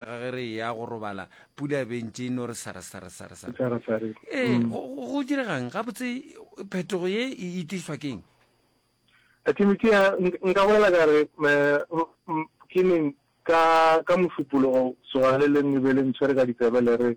Ga ge re eya go robala, pula e be e ntše e no re sare-sare-sare-sare. Sare-sare. Ee, Mm. go, go, go direga'ng? Gabotse phetogo ye e, e tlišwa ke'ng? A Timothea, nk- nka bolela ka re, me, m, ke neng, ka, ka mošupologo, tsoga le leng le be le ntshwere ka ditsebe le re,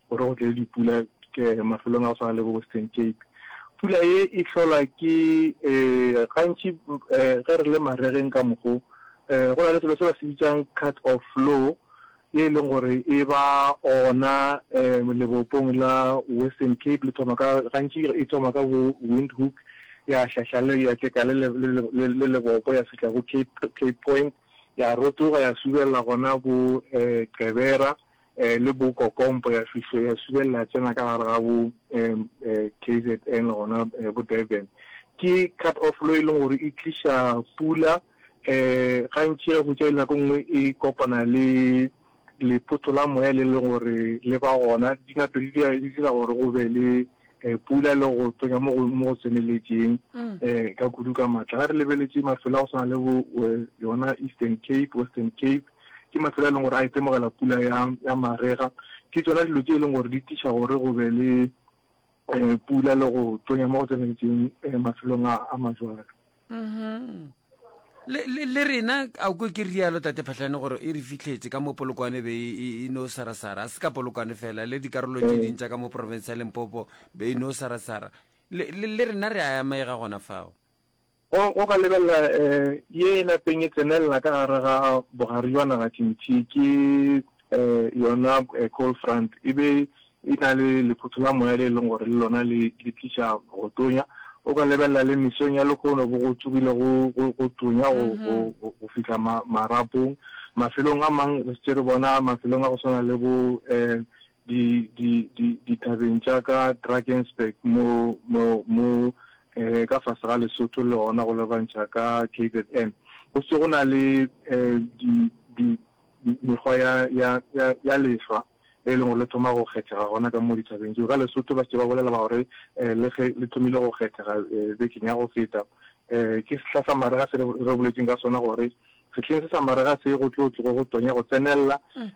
gore go tle dipula mafelong a go swana le bo Western Cape. Pula ye e hlolwa ke gantši ge re le maregeng ka mokgo go na le selo se ba se bitsang cut of flow ye e leng gore e ba ona lebopong la Western Cape le thoma ka gantši e thoma ka bo Windhoek ya hlahla le ya teka le le lebopo ya fihla go Cape Cape Point ya rotoga ya subelela gona bo Gqeberha le bo Kokompo ya fihlo ya subelela ya tsena ka gare ga bo KZN gona bo Durban. Ke cut off lo e leng gore e tliša pula gantši ge go tšaile nako nngwe e kopana le lephoto la moya le le gore le ba gona dinato di dira gore go be le pula le go tonya mo go tseneletšeng ka kudu ka matla. Ga re lebeletše mafelo a go tshwana le bo yona Eastern Cape, Western Cape, Ke mafelo a e leng gore a itemogela pula ya, ya marega. Ke tsona dilo tše e leng gore di tliša gore go be le um pula le go tonya mo go tseneletseng um mafelong a, a majwalo. Mhm. Le, le, le rena a o kwe ke rialo tate phatlhane gore e re fitlhetse ka mo polokwane be e, e, e no sarasara a se ka polokwane fela le dikarolo tše Ee. ding tša ka mo porofense ya lempopo be e no sarasara le, le, le rena re a amega gona fao Go go ka lebelela ye e lapeng e tsenelela ka gare ga bogare jwa naga tšintši ke yona cold front e be e na le lephuthu la moya le e leng gore le lona le le tliša go tonya. O ka lebelela le mesong ya lehono bo go tsogile go go tonya go go go fihla marapong. Mafelong a mang re setse re bona mafelong a go swana le bo di, di, di, dithabeng tša ka Drakensberg mo, mo, mo eh, ka fase ga Lesotho le gona go lebantšha ka KZN. Go se go na le eh, di, di, mekgwa ya, ya, ya, ya lehlwa e leng gore le thoma go kgethega gona ka mo dithabeng tseo ka lesotho ba se ba bolela ba gore um le ge le thomile go kgethega um bekeng ya go feta um ke sehla sa marega se re boletseng ka sona gore Sehleng se sa marega se go tlo tlogo go tonya go tsenelela. Um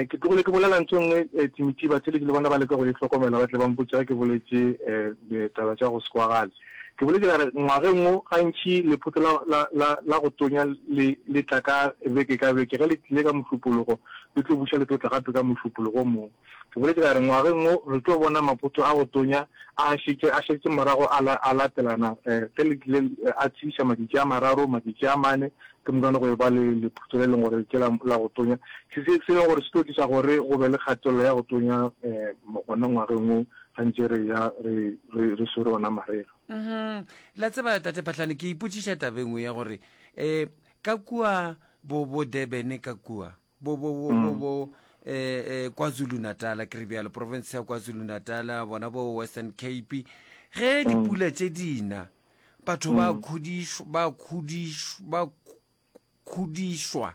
ke tlogile ke bolela ntho e nngwe, um Timothy Batsheleki le bona ba leka go e hlokomela, ba tle ba mpotše ge ke boletše um ditaba tša go se kwagale. Ke boletše ka re ngwageng wo gantši lephotho la, la, la, la go tonya le, le tla ka beke ka beke. Ge le tlile ka Mošupologo, le tlo buša le tlo tla gape ka Mošupologo o mong. Ke boletše ka re, Ngwageng wo re tlo bona maphoto a go tonya a šetše a šetše morago a la, a latelana, ge le tlile a tsheiša matšatši a mararo, matšatši a mane, ke mokane go e ba le lephutso le e leng gore ke la, la go tonya, se, se, se e leng gore se tlo tliša gore go be le kgatelelo ya go tonya um gona ngwageng wo ga ntše re eya re, re, re swere ona marega. Um-hum. La tseba, Tate Phahlane, ke ipotšiša taba e nngwe ya gore um ka kua bo, bo Durban ka kua, bo bo bo bo bo um kwazulu natala ke re bjalo province ya kwazulu natala bona bo western cape ge dipula tše dina batho ba khudišwa ba khudišwa ba khu- khudišwa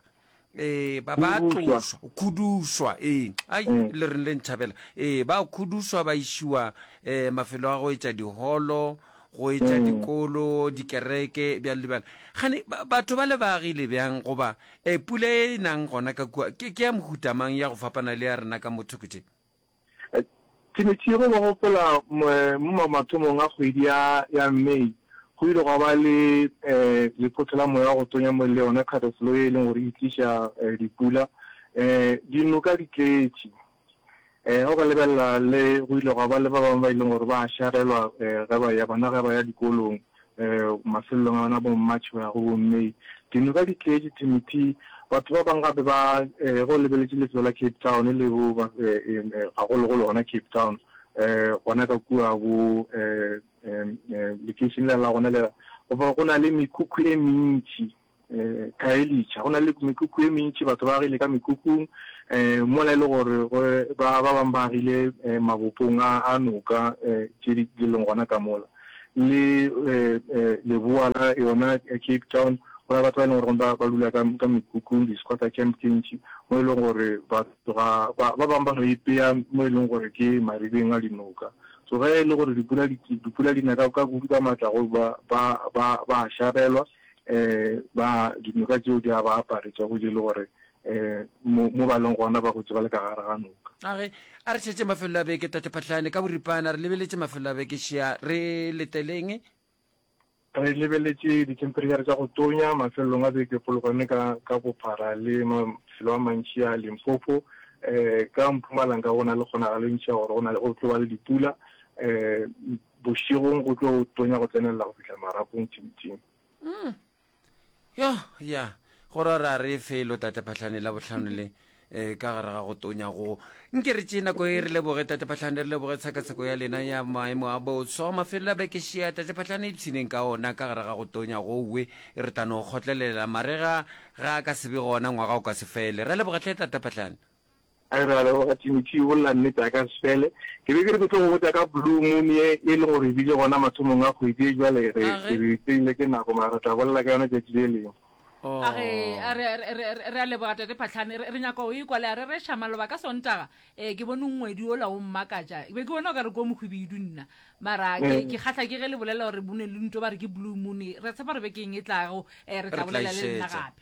eh ba ba Khudušwa. tloswa khudušwa ee ai Mm. le reng le ntšhabela ee ba khudušwa ba išiwa um mafelo a go etša diholo go etša dikolo, dikereke, bjalo le bjalo. Gane ba, batho ba le ba agile bjang, goba e, pula e nang gona ka kua, ke, ke ya mohuta mang ya go fapana le ya rena ka mo thoko tše? Timetše yego ba gopola mo, mo mathomong a kgwedi ya, ya May, go ile gwa ba le e, lephotho la moya wa go tonya mo le yona kgatafolo ye e leng gore e tliša e, dipula. E, dinoka di tletše. Ee, go ka lebelela le go ile gwa ba le ba bangwe ba e leng gore ba šarelwa um ge ba ya bona ge ba ya dikolong um mafelelong a bona bo March go ya go bo May. Dinoka di tletše Timothy, batho ba bangwe gape ba um go lebeletše lefelo la Cape Town le bo um gagologolo gona Cape Town um gona ka kua bo um um lekeišene la gona lela go na le mekhukhu e mentši um khaelitšha go na le mekukhu e mentši batho ba agile ka mekukhung um mola e le gore ba ba bangwe ba agile um mabopong a noka um tše di leng gona ka mola le um leboa la yona cape town go na batho ba e leng gore ba ba dula ka ka mekhukhung di-squatter camp tše ntši mo e leng gore batho ga ba bangwe ba ipeya mo e leng gore ke maribeng a dinoka so ge e le gore dipula di na ka kudu ka maatla go ba ba ba ba šarelwa um ba dinoka tšeo di a ba aparetša go je le gore um mo ba leng gona ba gotše ba le ka gare ga noka. A re a re tšhetše mafelelo a beke, Tate Phahlane, ka boripana re lebeletše mafelelo a beke šea, re leteleng? Re lebeletše dithemperetšhara tša go tonya mafelelong a beke Polokwane ka ka bophara le mafelo a mantši a Limpopo. Um ka Mpumalanga go na le kgonagalo e ntši ya gore go na le go tlo ba le dipula. Um Bošegong go tlo tonya go tsenelela go fihla marapong thibithing. Umm. Yo, ya. Go ra ra re felo Tate Phahlane Labohlano le eh, ka gare ga go tonya go. Nke re tšee nako e re leboge Tate Phahlane, re leboge tshekatsheko ya lena ya maemo a boswa. Mafelelo a beke šea Tate Phahlane ipshineng ka ona ka gare ga go tonya go we. Re tla no kgotlelela marega ga a ka se be gona, ngwaga o ka se fele. Ra leboga hle Tate Phahlane. A re, A leboga Timothy, o bolela nnete ya ka sefele. Ke be ke re ke tlo go botša ka blue moon ye e le gore e bile gona mathomong a kgwedi ye, bjale re re tseile ke nako mara re tla bolela ka yona tšatši le lengwe. A re, A re, re, re, re, re a leboga Tate Phahlane, re, re nyaka go ekwa le a rereša maloba ka Sontaga. Ee, ke bone ngwedi ola o mmakatša. Ke be ke bona o ka re ke o mohwibidu nna. Mara ke, ke kgahla ke ge le bolela gore bo ne le nto ba re ke blue moon. Re a tshepa gore bekeng e tlago re tla bolela le nna gape.